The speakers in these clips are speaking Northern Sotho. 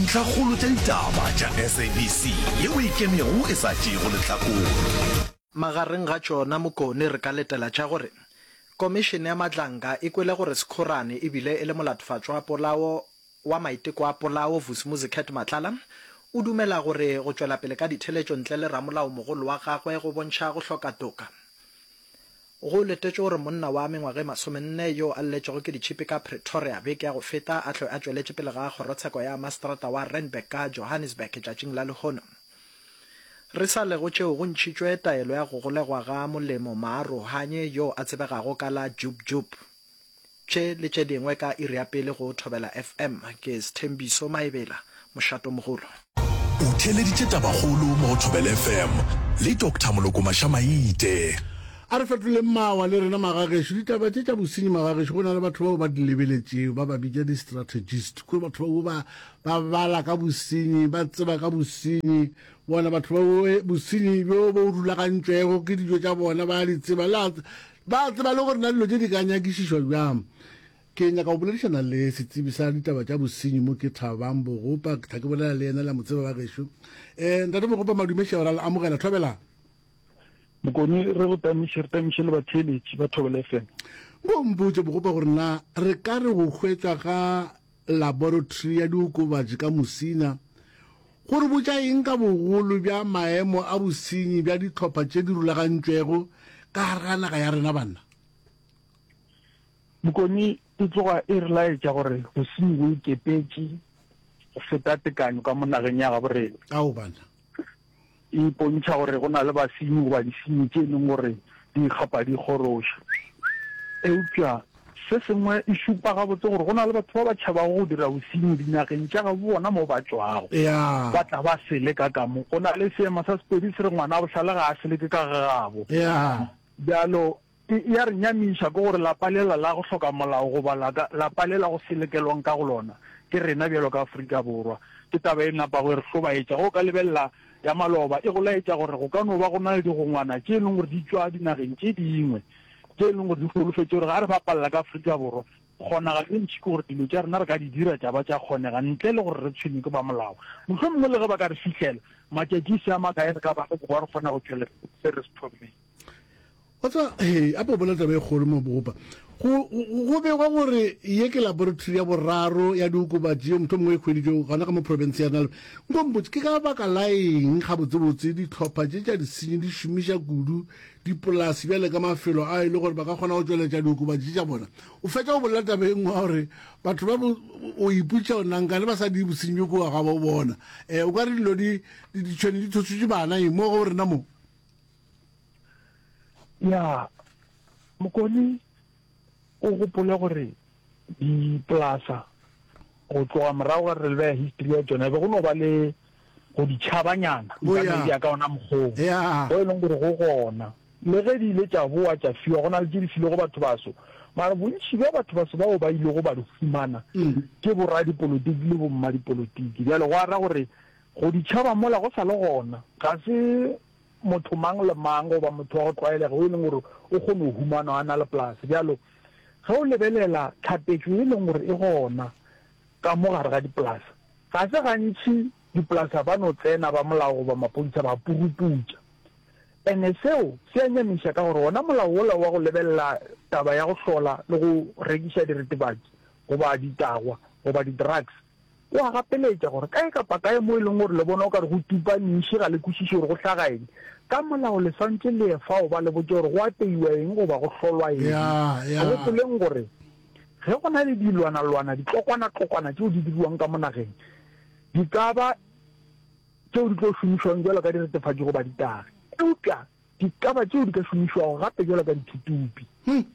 Ntlhakgolo tša ditaba tša SABC ye o e kenego e sa tšeego lehlakore. Magareng ga tšona Mokone re ka letela tša gore Komišene ya Matlanka e kwele gore Sekhorane e bile e le molatofatšwa wa polao wa maiteko a polao Vusi Muzicat Matlala o dumela gore go tšwelapele ka ditheletšo ntle le ramolaomogolo wa gagwe go bontšha go hloka toka Go letetšwe gore monna wa mengwaga e masomenne yo a lletšwego ke ditšhipi ka Pretoria beke ya go feta a hlwe a tšweletše pele ga kgorotsheko ya maseterata wa Randburg ka Johannesburg tšatšing la lehono. Re sa le go tšeo go ntšhitšwe taelo ya go golegwa ga Molemo Maarohanye yo a tsebegago ka la Jub Jub. Tše le tše dingwe ka iri ya pele go Thobela FM. Ke Sthembiso Maebela, mošatomogolo. O theeleditše Tabakgolo mo go Thobela FM le Doctor Moloko Maša-Maite. A re fetoleng mawa le rena magagešo. Ditaba tše tša bosenyi magagešo go na le batho bao ba di lebeletšego, ba ba bitša di-strategist. Kua batho bao ba, ba bala ka bosenyi, ba tseba ka bosenyi. Bona batho bao, bosenyi bjo bo rulagantšwego ke dijo tša bona ba a di tseba. Le a, Ba a tseba le gore na dilo tše di ka nyakišišwa bjang. Ke nyaka go boledišana le setsebi sa ditaba tša bosenyi mo ke Thabang Bogopa, ke thla ke bolela le yena, le a mo tseba ba gešo. Eh, Ntate Bogopa, madume šego, ra le amogela. Thobelang. Mokone, re go tamiše, re tamiše le batheeletši ba Thobela FM. Nko o mpotše, Bogopa, gore na re ka re go hwetšwa ga Laboratory ya Diokobatši ka Musina go re botša eng ka bogolo bja maemo a bosenyi bja dihlopha tše di rulagantšwego ka gare ga naga ya rena, banna? Bokone e tloga e re laetša gore bosenyi bo ikepetše go feta tekanyo ka mo nageng ya gabo rena. Ka gobane? e ipontšha gore go na le basenyi goba disenyi tše e leng gore di ikgapa di kgoroša. Eupša se sengwe e šupa gabotse gore go na le batho ba ba tšhabago go dira bosenyi dinageng tša gabo bona moo ba tšwago, ba tla ba se leka ka mo. Go na le seema sa Sepedi se re, Ngwana a bohlale ga a se leke ka ga gabo. Bjalo E, e a re nyamiša ke gore lapa lela la go hloka molao goba la ka, lapa le la go se lekelwang ka go lona ke rena bjalo ka Afrika Borwa. Ke taba e napago e re hlobaetša. Ge o ka lebelela ya maloba, e go laetša gore go ka no ba go na le digongwana tše e leng gore di tšwa dinageng tše dingwe tše e leng gore di holofetše gore ga re bapalela ka Afrika Borwa, kgonagalo e ntši ke gore dilo tša rena re ka di dira tša ba tša kgonega ntle le gore re tshwenywe ke ba molao. Mohlomongwe le ge ba ka re fihlela, matšatši e se a makae re ka ba le bokoa re kgona go tšwelela se re se thommeng. wa tseba hey a bobola taba e kgolo mo bogopa go be go gore ye ke laboratory ya boraro ya diokobatši yo motho mongwe e hweditšo gona ka mo province ya nalo nko mpotse ke ka baka la eng ga botsebotse ditlhopha tše tša disenyi di šomiša kudu dipolasi bjale ka mafelo a e le gore ba ka kgona go tšweletša diokobatši tša bona o fetša go bolela taba e nngwe wa gore batho ba o iputša o nankane ba sa di bosenyi bjo kowa ga bo bona um o ka re dilo ditšhwene di thositše bana e mo go rena moo ya mokoni o gopole gore dipolasa go tloga morago ga re lebeya history ya tsona be go no ba le go ditšhabanyana oh, ya ka ona mokgong go e leng gore go gona le ge di ile tša boa tša fiwa go na le tse di filego batho baso mara bontši bja batho baso bao ba ilego ba di fumana mm. ke boradipolotiki le bommadipolotiki bjale go ara gore Go di tšhaba mola go sa le gona. Ga se motho mang le mang goba motho wa go tlwaelega o e leng gore o kgona go humanwa a na le polase. Bjalo ge o lebelela tlhapetšo ye e leng gore e gona ka mo gare ga dipolase, ga se gantši dipolasa ba no tsena ba molao goba mapodisa ba puruputša. Ene seo se a nyamiša ka gore wona molao wola wa go lebelela taba ya go hlola le go rekiša diritibatsi goba ditagwa goba di-drugs, O a gapeletša gore, Kae kapa kae mo e lego gore le bona o ka re go tupa nši, ga le kwešiše gore go hlaga eng. Ka molao le swantše le ye fao ba le botše gore go apeiwa eng goba go hlolwa eng. Gopoleng gore ge go na le dilwanalwana, ditlokwanatlokwna tšeo di diriwang ka mo nageng, di ka ba tšeo di tlo šomišwang bjalo ka diretefatši goba ditagi. Eupša Dikaba tšeo di ka šomišwago gape bjalo ka dithuthupi.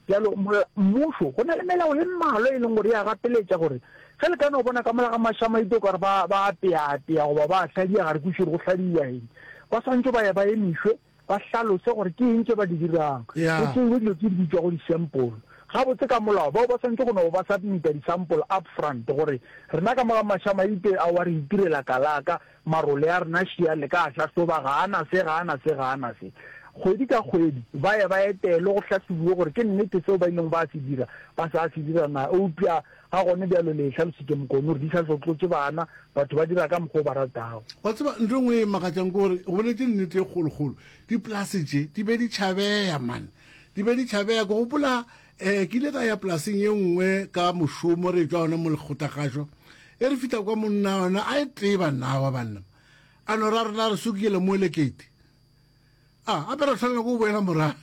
Bjalo, mmušo, go na le melao e mmalwa e leng gore e a gapeletša gore ge le ka no bona ka mola ga mašamaite o ka re ba, ba a teatea goba ba a hladia, ga re kwešiše gore go hladiwa eng. Ba swanetše ba ya ba emišwe, ba hlalose gore ke eng tše ba di dirang, go tšeiwe dilo tše di bitšwago disampole. Gabotse ka molao, bao ba swanetše go no ba submita disampole upfront gore, Rena ka mola ga mašamaite ao a re itirela kalaka, Marole a rena šia le ka a hlahloba, ga a na se, ga a na se, ga a na se. Kgwedi ka kgwedi ba ye ba etelwe go hlahlobiwe gore ke nnete seo ba ilego ba se dira ba sa se dira na. Eupša ga gone bjalo le e hlalositše Mokone, gore di sa tlotlontše bana, batho ba dira ka mokgwa o ba ratago. Wa tseba ntho e nngwe e makatšang ke gore go boletše nnete e kgolokgolo, dipolase tše di be di tšhabeya man, di be di tšhabeya, ke gopola, Ee, ke ile ka ya polaseng ye nngwe ka mošomo re tšwa gona mo lekgotagašo e re fihla kwa monna yona a e tee bannawa banna a no ra rena re sokile mo elekete a ah, gape ra tshwanela ko boela morago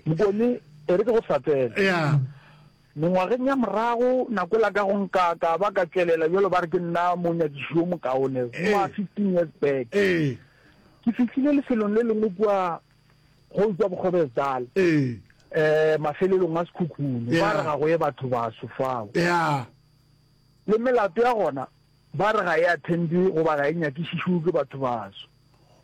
mokone e re ke go hlatsela ya mengwageng ya morago nako la ka go nka ka ba ka tšwelela jalo ba re ke nna monyakiši yo mokaone mo a fifteen years back ke fihlile lefelong le lengwe kua go utswa bokgobesdal um mafelelong a sekhukhune ba re ga go ye batho baso fao le melato ya gona ba re ga e attendwe goba ga e nyakišišiwe ke batho baso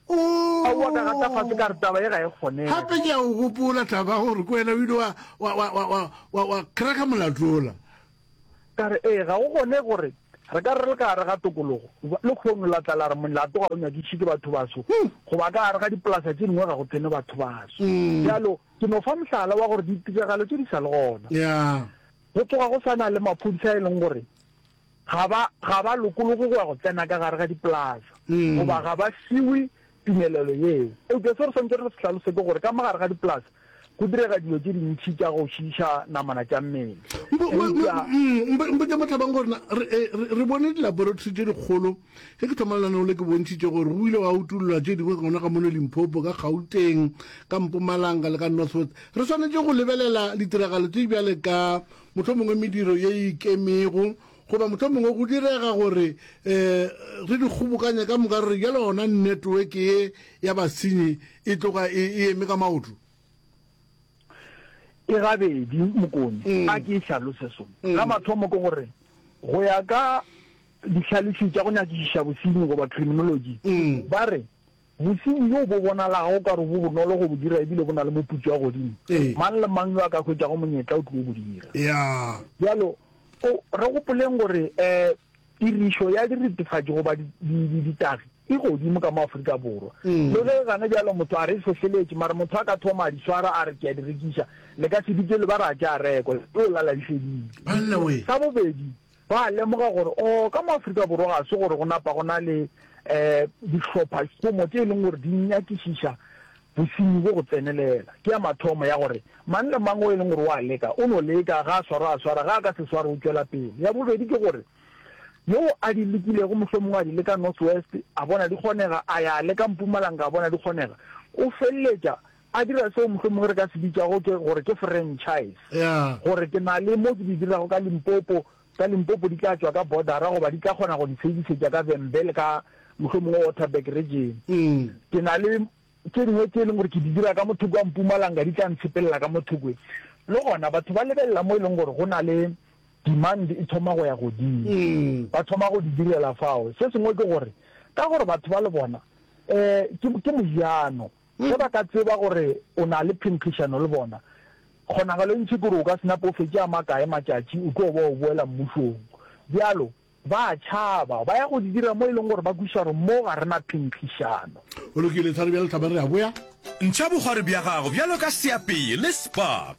oh. aowa ka gata fatshe ka re taba e ga e kgonege gape ke a o gopola taba gore ke wena o ile wa cracka molatola Ka re, Ee, ga go gone gore re ka re re le ka gare ga tokologo. Lehono la tla la re molato ga o nyadišwe ke bathobaso, goba ka gare ga dipolasa tše dingwe ga go tsene bathobaso. Bjalo, ke no fa mohlala wa gore ditiragalo tše di sa le gona, go tsoga go sa na le maphodisa a e leng gore ga ba, ga ba lokologe go ya go tsena ka gare ga dipolasa, goba ga ba fiwe tumelelo yeo. Eupša seo re swanetšego re se hlalose ke gore ka mo gare ga dipolase go direga dilo tše dintši tša go šiiša namana tša mmele. Eupša. Mpotše Mohlabang gore na re bone dilaboratory tše dikgolo ge ke thoma lenaneo le ke bontšhitše gore go ile gwa utollwa tše dingwe gona ka mono Limpopo, ka Gauteng, ka Mpumalanga le ka North West. Re swanetše go lebelela ditiragalo tše bjale ka mohlomongwe mediro ye e ikemego Goba mohlomongwe go direga gore re di kgobokanye ka moka re re bjale gona netweke ye ya basenyi e tloga e eme ka maoto? Ke gabedi, Mokone. A ke e hlalose so. Sa mathomo ke gore go ya ka dihlalefi tša go nyakišiša bosenyi goba criminology, ba re Bosenyi bjo bo bonalago o ka re bo bonolo go bo dira e bile bo na le moputso wa godimo. Mang le mang yo a ka hwetšago monyetla o tlo bo dira. Bjalo, re gopoleng gore tirišo ya diretefatši goba ditagi e godimo ka mo Afrika Borwa. Le ge gane bjalo motho a re e hlohleletše, mara motho a ka thoma a di swara a re ke a di rekiša, le ka se dutše le ba ra tša rekwa, e tlo lala di fedile. Sa bobedi, Ba a lemoga gore o ka mo Afrika Borwa ga se gore go napa go na le dihlophašomo tše e leng gore di nyakišiša bosenyi bjo go tsenelela. Ke ya mathomo ya gore mang le mang o e leng gore o a leka o no leka, ga a swarwa a swara, ga a ka se swarwe o tšwela pele. Ya bobedi ke gore yo a di lekilego mohlomongwe a di leka North West a bona di kgonega, a ya a leka Mpumalanga a bona di kgonega, o feleletša A dira seo mohlomongwe re ka se bitšago ke gore ke franchise, gore ke na le mo ke di dirago ka Limpopo, tsa Limpopo di tla tšwa ka bordera goba di tla kgona go di servisetša ka Vhembe le ka mohlomongwe Waterberg region. Ke na le tše dingwe tše e leng gore ke di dira ka mo thoko ga Mpumalanga, di tla ntshepelela ka mo thokwe. Le gona batho ba lebelela mo e leng gore go na le demand e thoma go ya godimo, ba thoma go di direla fao. Se sengwe ke gore ka gore batho ba le bona um ke, ke mojano, Ge ba ka tseba gore o na le phenkgišano le bona, kgonagalo e ntši kore o ka se nape o fetše a makae matšatši o tlo ba o boela Mmušong. Bjalo, ba a tšhaba, ba ya go di dira mo e lego gore ba kwešiša gore mo ga re na phenkgišano. Go lokile, Thari, bjale tla ba re a boya. Ntšha bogwari bja gago bjalo ka seapee le spa.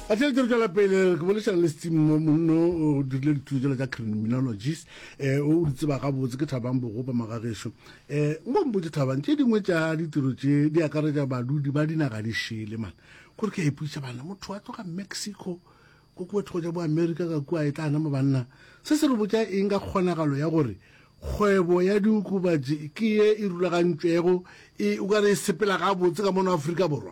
A tle re tlo tšwela pele re boledišana le Steve Mo monno o dirile dithuto tšela tša criminologies eh o di tseba gabotse ke Thabang Bogopa magagešo eh nko mpotše Thabang tše dingwe tša ditiro tše di akaretša badudi ba dinaga di šele mane kore ke a ipuša bana motho a tloga Mexico ko kua thoko tša bo America ka kua e tla nama banna se se re botša eng ka kgonagalo ya gore kgwebo ya diokobatši ke ye e rulagantšwego e o ka re e sepela gabotse ka mono Afrika Borwa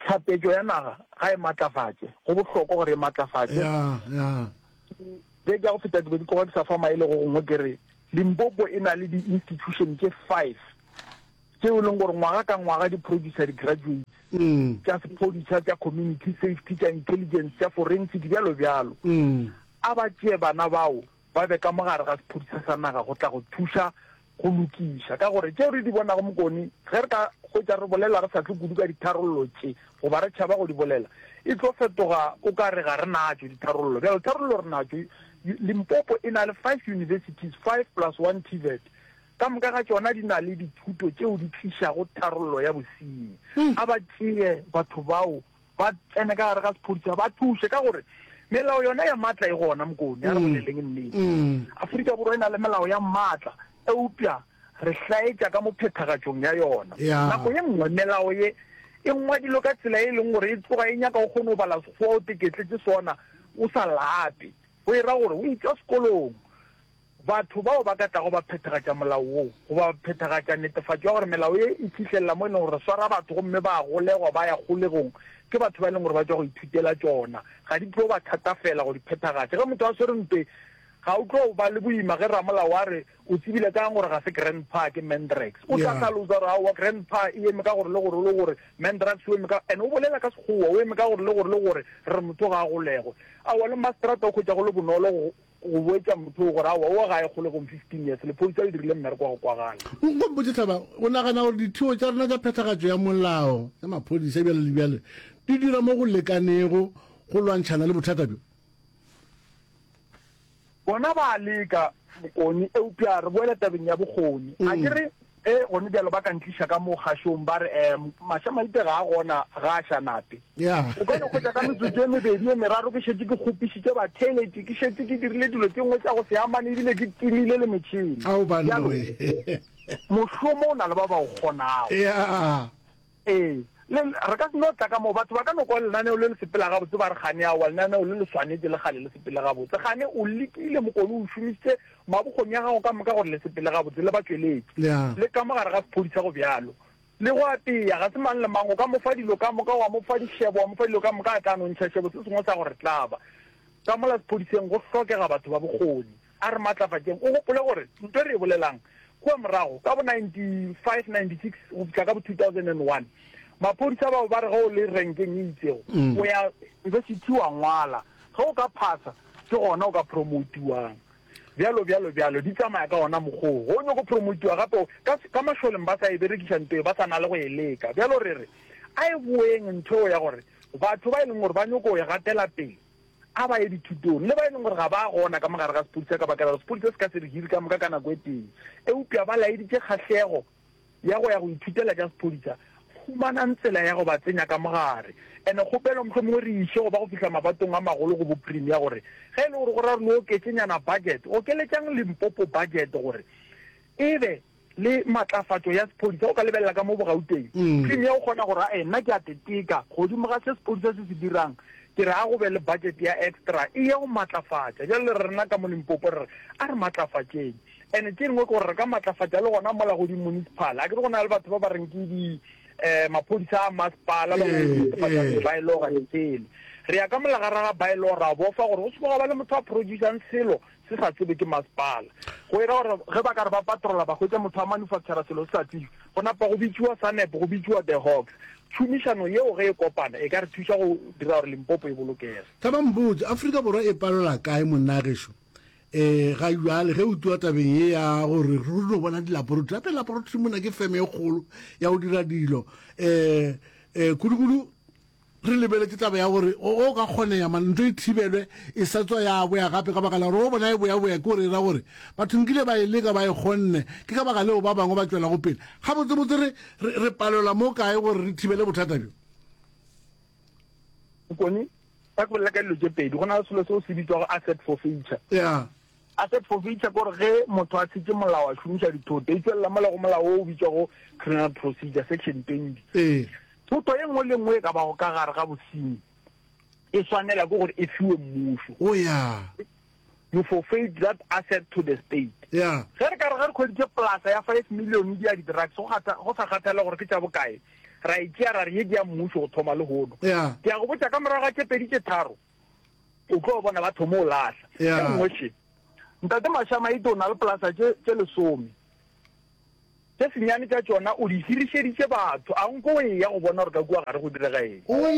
Tlhapetšo ya naga ga e matlafatše, go bohlokwa gore e matlafatše. Beke ya go feta ke be ke tloga ke sa fa maele go gongwe ke re Limpopo e na le di-institution tše five tšeo e leng gore ngwaga ka ngwaga di producer di-graduates tša sephodisa, tša community safety, tša intelligence, tša forensic, bjalo bjalo. A ba tšee bana bao ba be ka mo gare ga sephudiša sa naga go tla go thuša go lokiša. Ka gore tšeo re di bonago mokone, ge re ka hwetša re bolela re sa tle kudu ka ditharollo tše goba re tšhaba go di bolela, e tlo fetoga o ka re ga re natšo ditharollo. Bjale tharollo re natšo. Limpopo e na le five universities, five plus one TVET. Ka moka ga tšona di na le dithuto tšeo di tlišago tharollo ya bosenyi. A ba tšee batho bao ba tsene ka gare ga sephodisa ba thuse ka gore melao yona ya matla e gona mokone ya re boleleng nnete aforika borwa e na le melao ya matla eupša re hlaetša ka mo phethagatšong ya yona nako ye nngwe melao ye e ngwadilwe ka tsela e leng gore e tloga e nyaka o kgone go bala sekgowa o teketletse sona o sa lape o e ra gore o itšwa sekolong Batho bao ba ka tlago ba phethagatša molao woo, goba ba phethagatša netefatšo ya gore melao ye e fihlelela mo e lego gore re swara batho gomme ba a golegwa ba ya kgolegong, ke batho ba e lego gore ba tšwa go ithutela tšona. Ga di tlo ba thatafela go di phethagatša. Ge motho a swere ntweng, ga o tlo ba le boima ge ramolao a re, O tsebile kaang gore ga se grandpa, ke mandrax? O tla hlalosa gore, Aowa, grandpa e eme ka gore le gore le gore, mandrax o eme ka. And o bolela ka Sekgowa, o eme ka gore le gore le gore, re re motho ga a golegwe. Aowa, le mmaseterata o hwetša go le bonolo go. Go boetša motho yoo gore, Aowa, owa ga e kgole gong, fifteen years, lephodisa le dirile mmereko wa go kwagala. Nkgopotše, Hlaba, o nagana gore dithiwo tša rena tša phethagatšo ya molao ya maphodisa bjale le bjale di dira mo go lekanego go lwantšhana le bothata bjo? Bona ba a leka, Mokoni, eupša re boele tabeng ya bokgoni. Akere Ge go ne bjalo ba ka ntliša ka mo kgašong ba re, Um, Maša-Maite ga a gona, ga a ša nape. O ka no hwetša ka metsotso e mebedi e meraro ke šetše ke kgopišitše batheleti, ke šetše ke dirile dilo tše nngwe tša go se amane e bile ke timile le metšhene. Ao banna Bjalo, we. mošomo o na le ba ba o kgonago. Ya. Ee, le, re ka se no tla ka moo. Batho ba ka no kwa lenaneo le le sepela gabotse ba re, Gane, aowa, lenaneo le le swanetše le kgale le sepele gabotse. Gane, o lekile, mokone, o šomišitše mabokgoni a gago ka moka gore le sepele gabotse, le ba tšweletše. Le ka mo gare ga sephodisa, go bjalo. Le go apea, ga se mang le mang o ka mo fa dilo ka moka, wa mo fa dišebo, wa mo fa dilo ka moka, a tla no ntšha šebo. Se sengwe sa gore, tla ba. Ka mola sephodiseng go hlokega batho ba bokgoni. A re matlafatšeng. O gopole gore ntwa e re e bolelang kua morago ka bo 95-96 go fihla ka bo 2001, maphodisa bao ba re ge o le renkeng e itšego o ya yunibesithi wa ngwala, ge o ka phasa ke gona o ka promoutiwang, bjalo, bjalo, bjalo. Di tsamaya ka wona mokgwa wo. Ge o nyoko promoutiwa gape, ka, ka mašoleng ba sa e berekiša ntwa ye, ba sa na le go e leka. Bjalo re re a e boeng ntho eo ya gore batho ba e leng gore ba nyoko go e gatela pele, a ba ye dithutong le ba e leng gore ga ba gona ka mo gare ga sepodisa ka bakela gore sepodisa se ka se re hiri ka moka ka nako e tee. Eupša ba laeditše kgahlego ya go ya go ithutela tša sepodisa. Humanang tsela ya go ba tsenya ka mo gare. And kgopelo mohlomongwe re iše go ba go fihla mabatong a magolo go bo Premier gore ge e le gore go ra gore le oketše nyana budget, okeletšang Limpopo budget gore e be le matlafatšo ya sephodisa, o ka lebelela ka mo bogauteng screen ya go kgona gore ae nna ke a teteka godimo ga se sephodisa se se dirang, ke re a go be le budget ya extra e ye go matlafatša. Bjale rena ka mo Limpopo re re a re matlafatšeng and tše dingwe ke gore re ka matlafatša le gona mola go di municipal, akere go na le batho ba ba reng ke di um maphodisa a masepala ba netefatša ba e le gore tsele re ya ka molagara ga ba e le gore ra bofa gore go se tlo ga ba le motho a producer-ng selo se sa tsebe ke masepala. Go ira gore ge ba ka re ba patrola ba hwetša motho a manufactura selo se sa tsebe, go napa go bitšiwa SANEP, go bitšiwa The Hawks. Tšhomišano yeo ge e kopana e ka re thuša go dira gore Limpopo e bolokege. Thaba Mbotsi, Afrika Borwa e palelwa kae monnageso e ga jwale ge o tliwa tabeng ye ya gore re no bona dilaporotri gape laporotri mona ke feme e kgolo ya go dira dilo um um kudukudu Re lebeletše taba ya gore go ka kgonega mare ntho e thibelwe e sa tswa ya boya gape ka baka la gore go bona e boya-boya ke gore e ra gore batho nkile ba e leka ba e kgonne, ke ka baka leo ba bangwe ba tšwelago pele. Gabotsebotse re, re, re palelwa mo kae gore re thibele bothata bjo? Bokone, ba ke bolela ka dilo tše pedi, go na le selo seo se bitšwago asset forfeiture. Yeah. A se profeisa ke gore ge motho a tshetse molao a šomiša dithoto, e tšwelela mola go molao wo o bitšwago Criminal Procedure, Section 20. Ee. Thoto ye nngwe le nngwe e ka bago ka gare ga bosenyi e swanela ke gore e fiwe mmušo. O ya. You forfeit that asset to the state. Ya. Ge re ka re ge re hweditše polasa ya five million ya di-drugs, go kgatha, go sa kgathalela gore ke tša bokae, ra e tšea ra re ye ke ya mmušo go thoma lehono, Ya. ke ya go botša ka morago ga tše pedi tše tharo, o tlo bona ba thomo o lahla yeah. e nngwe še ntate mashama ite o na le polasa tše tše lesome tše senyane tša tšona o di hirišeditše batho a nko o eya go bona gore ka kua gare go direga eng oh,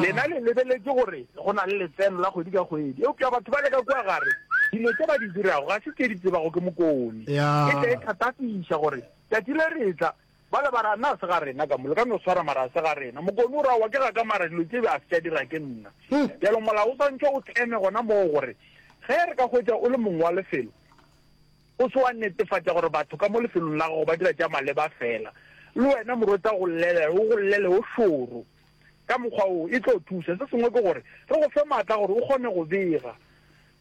lena le lebeletse gore go na le letseno la kgwedi ka kgwedi eupša batho ba le ka kua gare dilo tse ba di dirago ga se tse di tsebago ke mokone ke tla e thatafiša gore tsatsi le retla Bale ba re, A na a se ga rena ka mo? Le ka no swara, mara a se ga rena. Mokoni o re, Aowa, ke ga ka, mara dilo tše be a se tša dira ke nna. Bjalo Molao o swantšwe o tleme gona moo gore ge re ka hwetša o le mong wa lefelo, o se wa netefatša gore batho ka mo lefelong la gago ba dira tša maleba feela. Le wena morweta go llelela, o go llele o šoro. Ka mokgwa woo e tlo thuša. Se sengwe ke gore re go fe maatla gore o kgone go bega.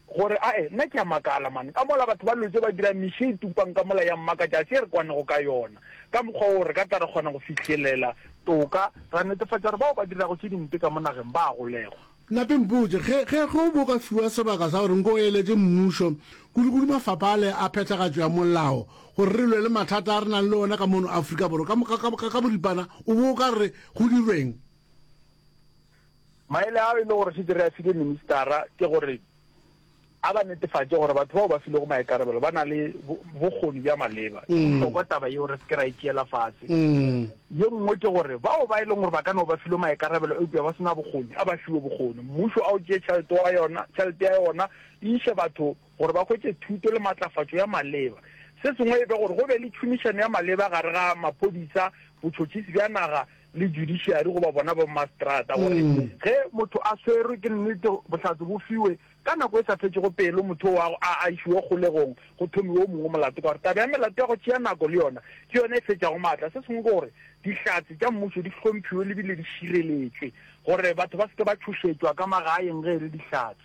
Gore, Ae, nna ke a makala, man, ka mola batho ba lwetše ba dira miši e tupang ka mola ya mmakatša, se re kwanego ka yona, ka mokgwa woo re ka tla ra kgona go fihlelela toka, ra netefatša gore bao ba dirago tše dimpe ka mo nageng ba a golegwa. Nna ke mpotše, Ge, ge, ge o bo o ka fiwa sebaka sa gore nke o eletše mmušo, kudukudu mafapha ale a phethagatšo ya molao, gore re lwe le mathata a re nang le ona ka mono Afrika Borwa ka, ka, ka, ka, ka boripana, o bo o ka re go dirweng? Maele ao e le gore šetše re a file ministara ke gore a ba netefatše gore batho bao ba filego maikarabelo ba na le bokgoni bja maleba. E bohlokwa taba yeo re se ke ra e tšeela fase. Ye nngwe ke gore bao ba e leng gore ba ka no ba filwe maikarabelo eupša ba se na bokgoni, a ba fiwe bokgoni. Mmušo a o tšee tšhelete ya yona e iše batho gore ba hwetše thuto le matlafatšo ya maleba. Se sengwe e be gore go be le tšhomišano ya maleba gare ga maphodisa, botšhotšhisi bja naga le judiciary goba bona bommaseterata gore ge motho a swerwe ke nnete bohlatse bo fiwe ka nako e sa fetšego pelo motho oo a a išiwa kgolegong go thomiwe o mongwe molato ka gore taba ya melato ya go tšea nako le yona ke yona e fetšago maatla. Se sengwe ke gore dihlatse tša mmušo di hlomphiwe le bile di šireletšwe gore batho ba se ke ba tšhošetšwa ka magaeng ge e le dihlatse.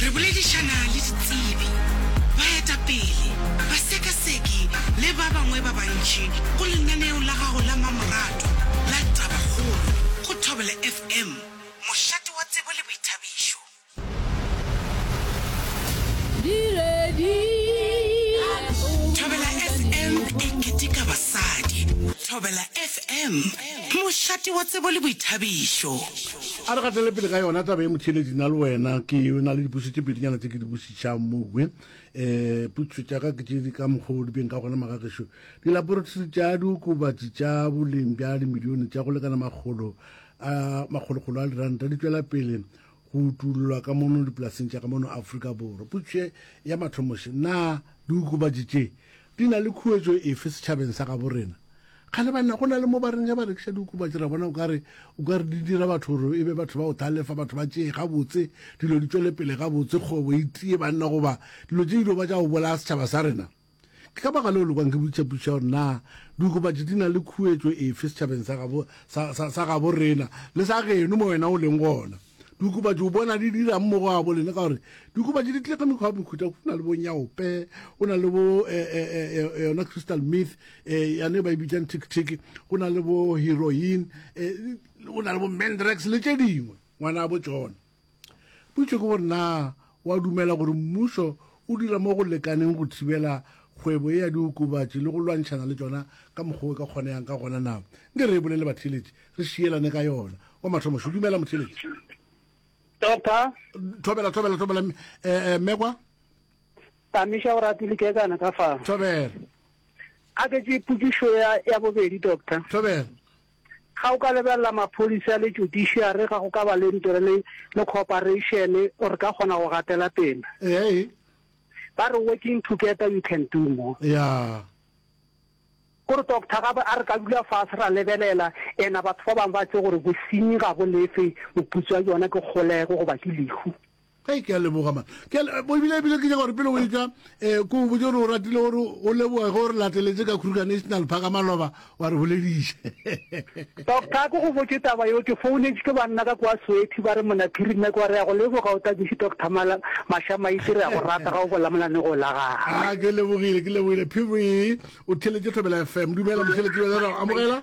Re boledišana le ditsebi, baetapele, basekaseki le ba bangwe ba bantši go lenaneo la gago la mmamoratwa la Tabakgolo go Thobela FM, mošate wa tsebo le boithabišo. Thobela FM e keteka basadi. Thobela FM, mošate wa tsebo le boithabišo. A re gatele pele ka yona taba e motheeletši nna le wena ke na le dipotso tše pedinyana tse ke di bositšhang mowe um eh, putso tša ka ke tše di ka mokgwa o di beng ka gona magagešo dilaboratory tša diokobatši tša boleng bja dimilione tša go lekana makgolo a makgolokgolo a diranta di tšwela pele go utulolwa ka mono dipolaseng tša ka mono afrika borwa putso ya mathomoše na diokobatši tše Di na le khuetšo efe setšhabeng sa gabo rena? Kgale banna go na le mo ba reng ge ba rekiša diokobatši ra bona o ka re o ka re di dira batho gore e be batho ba go thalefa, batho ba tšee gabotse, dilo di tšwele pele gabotse, kgwebo e tie banna goba dilo tše ilego ba tša go bolaya setšhaba sa rena. Ke ka baka leo le kwang ke botšiša potšišo ya gore na diokobatši di na le khuetšo efe setšhabeng sa gabo, sa, sa, sa gabo rena le sa geno mo wena o leng gona. Diokobatši o bona di dirang mo go abo lena ka gore diokobatši di tlega mekgwa ya mekhuta go na le bo nyaope go na le bo eh, eh, eh, eh, eh, yona crystal myth eh, yane ba e bitsang tiktik go na le bo heroin eh, go na le bo mandrax le tše dingwe ngwana a bo tsona potso ke gore na O a dumela gore mmušo o dira mo go lekaneng go thibela kgwebo ye ya diokobatši le go lwantšhana le tšona ka mokgwa o e ka kgonegang ka gona na? Nke re e bolele batheeletši, re šielane ka yona. Wa mathomo šo, Dumela, motheeletši. Doctor. Thobela, thobela, thobela, mme, eh, eh, mme kwa. Tamiša o rati likekana ka fa. Thobela. A ke tše pukišo ya, ya bobedi, Doctor. Thobela. Ga o ka lebelela maphodisa le judiciary ga go ka ba le ntore le le cooperation o re ka kgona go gatela pele. Ee. Ba re working together you can do more. Yeah. Gore doctor ga a re ka dula fa se ra lebelela ena batho ba bang ba tse gore bosinyi ga bo lefe moputswa yona ke kgolego go ba ke lehu. Hei, ke a leboga man. Ke a le- bo- ebile ebile ke nyaka gore pele o etša um ko o botse gore o ratile gore o leboge ge o re lateletse ka kruger national park a maloba wa re bolediša Doctor, ko go botše taba yo, ke founetše ke banna ka kwa Sowethi ba re mona Phiri Mac wa re ya go leboga o takiše Doctor Mala Mashamaite re ya go rata ga o bola mona ne go la gagwe. a ke lebogile ke lebogile phiri o theletše thobela fm dumela motheletši bjale ra go amogela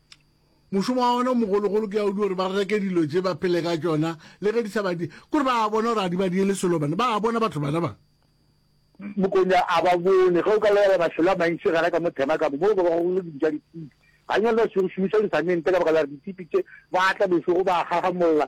Mošomo wa bona o mogologolo ke ya o di gore ba reke dilo tše ba phele ka tšona le ge di sa badi kore ba bona gore a di badiele selo bana ba bona batho bana ba mokonya a ba bone ge o ka lebala mafelo a mantši gana ka mo thema ka mo mo ba bagolo di ja ditipi ganyane ba šomiša disamente ka baka la re ditipi tše ba tla bešogo ba gagamolola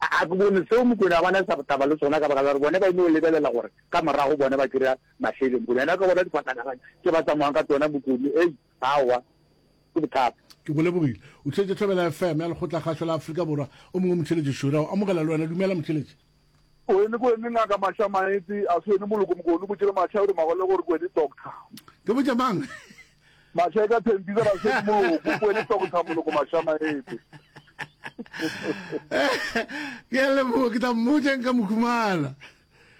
A ke bone seo Mokwena a bana taba le sona ka baka la gore bone ba ino lebelela gore ka morago bone ba kry-a mašeleng. Mokwena yena o ka bona difatanaganyi tše ba tsamayang ka tsona bokone. Ei, aowa, ke bothata. Ke go lebogile. O tšheletše Thobela FM ya Lekgotlakgašo la Afrika Borwa. O mongwe Motšheletši Šure o amogela le wena. Dumela Motšheletši. Kwene, kwene ngaka Masha Maetsi, a se wene moloko mokone o botše le Masha o re magole gore kwene doctor. Ke botše mang? Masheka Thembisa Basedi Moloko o boele tsa go tha moloko mashamaete. Ke a leboga ke tla mmotsa nka mo khumana.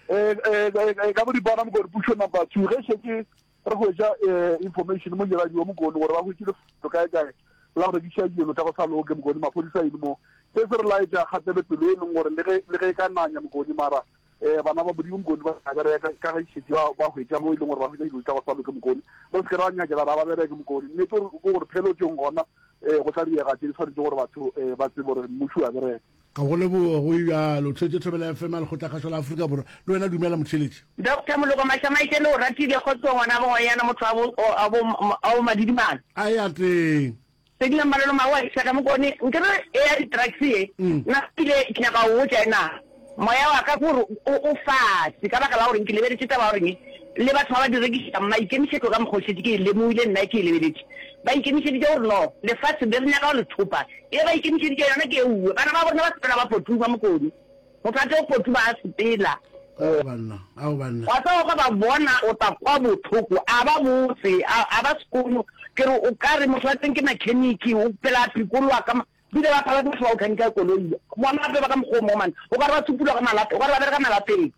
Eh eh ka bo dipana mo go pušo number 2 ge se ke re go ja eh, information mo nyela diwa mo go gore ba go tšile go kae kae la go rekisa dilo tsa go sa loke mo go maphodisa ile mo se se re laetša kgatele pelo e leng gore le ge le ge ka nanya mo go mara Ee, bana ba Modimo mokone ba tla bereka, ka ge šetše ba, ba hwetša mo e leng gore ba hwetša dilo tša go sa loke mokone. Re se ke ra nyakela ra ba bereke mokone. Nnete ke gore phelotšong gona um go tla direga tše di swanetšego gore batho um ba tsebe gore mmuši o a bereka. Ga go leboge go e bjalo. Tlhwetše Thobela FM ya Lekgotlakgašo la Afrika Borwa. Le wena dumela motheeletši. Doctor Moloko Mašamaitše le o ratile kgotsong wena bogoyana motho wa bo, o, a bo, a bo Madidimala. A e ateng. Se dira malolo mawo a iša ka mokone nkere ea di drugs ye. Nna kile ke nyaka go botša ena moya wa ka gore o o fase ka baka la gore nke lebeletše taba ya gore ne le batho ba ba di rekišang maikemišetlo ka mokgo šetše ke e lemohile nna ke e lebeletše ba ikemišeditše gore no lefase le re nyaka go le thopa e ba ikemišeditše yona ke e uwe bana ba borena ba sepela ba potuma mokone Go tla tlo kgothi ba a sepela. Ao banna, ao banna. Wa tseba ge ba bona o tla kwa bohloko, a ba botse, a, a ba sekono. Ke re o ka re motho wa teng ke mekheniki, o phela a phikoloa ka ma, ba ile ba phela ke motho wa go khenika koloi. Bona gape ba ka mokgwa o mo, man. O ka re ba supulwa ka malate, o ka re ba bereka malateng.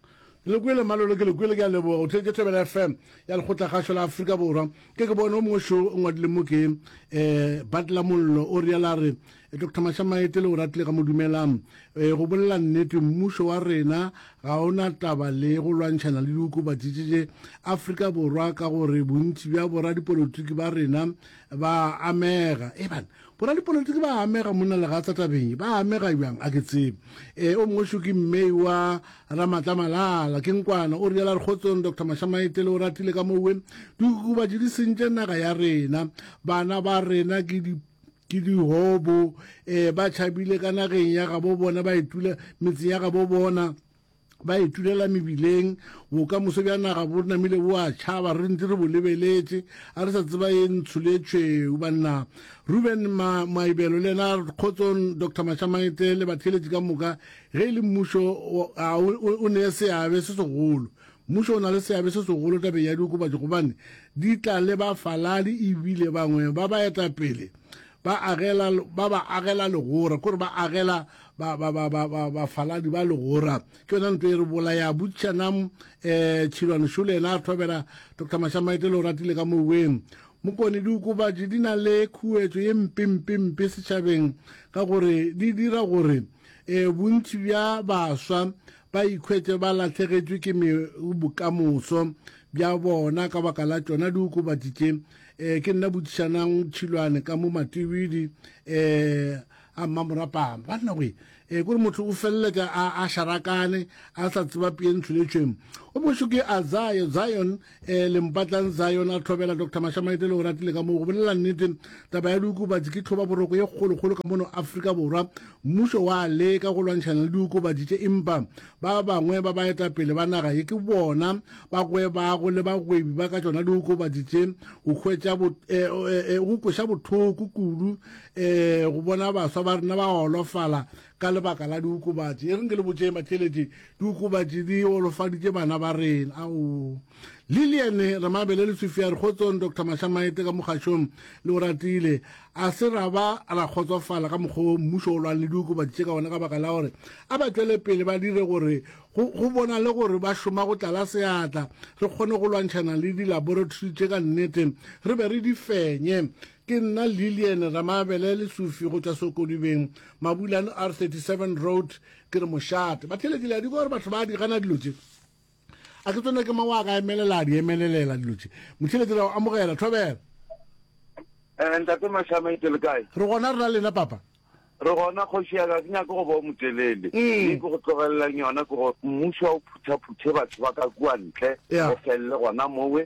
Ke le kwele Malolo, ke le kwele, ke a leboga. O theetše Thobela FM ya Lekgotlakgašo la Afrika Borwa. Ke ke bone o mongwe šo o ngwadile mo ke, eh, Butler Mollo o realo a re, Doctor Mashamaete le Oratile ga mo dumelang. E, go bolela nnete, mmušo wa rena ga o na taba le go lwantšhana le diokobatši tše tše Afrika Borwa ka gore bontši bja boradipolotiki ba rena ba amega. E bana, boradipolotiki ba amega monna legatsa tabeng, ba amega bjang a ke tsebe. E, o mongwe šoki mme wa Ramatla Malala, ke nkwana, o riela Rekgotsong Doctor Mashamaete le Oratile ka mowe, diokobatši di sentše naga ya rena, bana ba rena ke di Ke dihobo, ee, ba tšhabile ka nageng ya gabo bona, ba itula metseng ya gabo bona, ba itulela mebileng. Bokamoso bja naga bo namile bo a tšhaba, re ntse re bo lebeletše, a re sa tseba ye ntsho le ye tšhweu. Banna Ruben Ma, Maibelo, le yena Kgotso, Doctor Mashamaite le batheeletši ka moka, ge e le mmušo, a o, o, o neye seabe se segolo. Mmušo o na le seabe se segolo tabeng ya diokobatši gobane di tla le bafaladi ebile bangwe ba baetapele ba agela ba ba agela legora kore ba agela bafaladi ba legora ke yona nto e re bolaya butšana um eh, tšhilwane šole ena a thobela dr mashamaete le o ratile ka moweng mokone diokobatši di na le khuetso ye mpempempe setšhabeng ka gore di dira gore um bontši bja baswa ba ikhwetše ba lahlegetšwe ke bokamoso bja bona ka baka la tšona diokobatši tše um ke nna botšišanang tšhilwane ka mo matibidi um a mmamorapama banna goe um kore motho o feleletša a šarakane a sa tseba pee ntsholetšweng o bošo ke a zion um lempatlang zion a tlhobela dr mashamaete le o ratile ka moo go bolelela nnete taba ya diokobatsi ke tlhoba boroko ye kgolokgolo ka mono afrika borwa mmušo wa leka go lwantšhana le diokobatsi tše empa ba bangwe ba baetapele ba naga ye ke bona ba gwebago le bagwebi ba ka tšona diokobatsi tše go hwetša go eh, eh, eh, kweša bothoko kudu um go bona baswa ba rena ba golofala Ka lebaka la diokobatši, e reng ke le botšee matšeletše, diokobatši di golofaditše bana ba rena. Ao. Lillian Remabele le Sophia re kgotsong, Doctor Mashamaete ka mo kgašong le o ratile. A se ra ba ra kgotsofala ka mokgwa o mmušo o lwang le diokobatši tše ka wona ka baka la gore a ba tšwele pele ba dire gore go, go bona le gore ba šoma go tlala seatla, re kgone go lwantšhana le dilaboratory tše ka nnete, re be re di fenye. Ke nna Lillian Ramabele Lesufi go tšwa Sokolubeng, Mabulane R37 Road. Ke re mošate batheletšele a di gore batho ba di gana dilo tše. A ke tsone ke mang wa ka emelela a di emelelela dilo tše. Motheletšele o amogela thobela. Eh, ntate mashama itse le kae re gona rena lena papa re gona kgoši ya ka ke nyake go bo motelele mm. e ke go tlogelelang yona ke go mmuso wa o phuthaphuthe batho ba ka kua ntle go felele gona mowe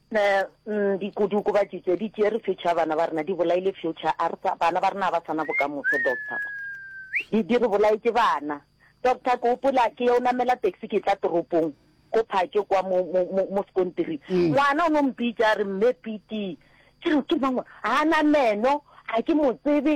Nna ndi kudu kuba jitse di tšere future ya bana ba rena, di bolaile future, a re sa, bana ba rena ga ba sa na bokamoso, doctor. Di, di re bolaetše bana. Doctor, ke gopola ke yo namela taxi ke tla toropong, ko Phatše kwa mo, mo, mo, mo sekontiring. Ngwana o no mpitša a re, Mme Piti. Ke re, Ke mang o? Ga a na meno, ga ke mo tsebe,